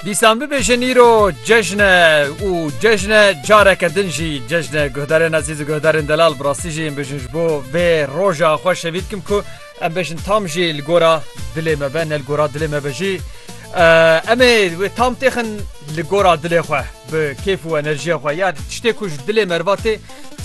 Dîsan bibêjin îro cejn e û cejn e careke din jî cejn e guhdarên ezîz û guhdarên delal bi rastî jî em bêjin ji bo vê roja xwe şevî dikim ku em bêjin tam jî li gora dilê me be ne li gora dilê me be jî em ê wê tam têxin li gora dilê xwe bi kêf û enerjiya xwe ya tiştê ku ji dilê me re va tê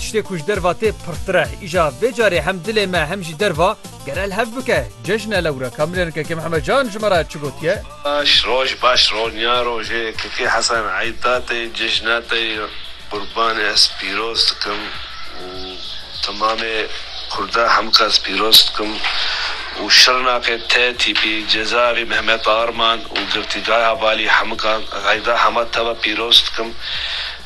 tiştê ku ji derve tê pirtir e îja vê carê hem dilê me hem jî derve Gerel hev bike cejne lewre Kamilên Keke Mihemed Can ji me re çi gotiye? Baş roj baş ronya rojê Keke Hesen Eyta tê cejna te yê qurbanê ez pîroz dikim û temamê kurda hemqas pîroz dikim û şirnakê te tîpî cezavî Mehmet Arman û girtîgaya valî hemqan Eyda hema te ve pîroz dikim.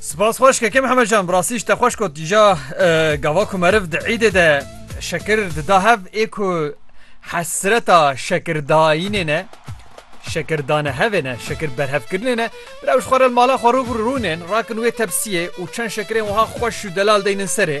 Spas xweş keke Mihemed Can bi rastî ji te xweş got îja gava ku meriv di îdê de şekir dida hev ê ku hesreta şekirdayînê ne şekirdane hevê ne şekir berhevkirinê ne rewş xwe re mala xwe rû rûnên rakin wê tepsiyê û çend şekirên wiha xweş û delal deynin serê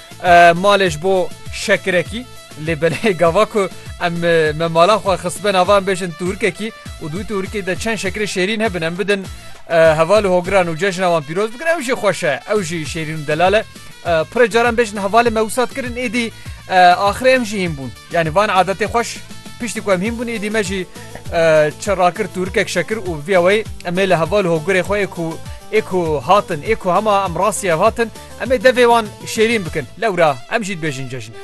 Malê ji bo şekirekî lê belê gava ku em me mala xwe xistbe nava em bêjin tûrikekî û dû tûrikê de çend şekirê şêrîn hebin em bidin heval û hogiran û cejna wan pîroz bikin ew jî xweş e ew jî şêrîn û delal e pirê caran bêjin hevalê me wisat kirin êdî axirê em jî hîn bûn yanî van adetê xweş piştî ku em hîn bûn êdî me jî çi rakir tûrikek şekir û vîya wey em ê li heval û hogirê xwe ê ku ê ku hatin ê ku hema em rastî ev hatin Em ê devê wan şêrîn bikin. Lewra em jî dibêjin cejn e.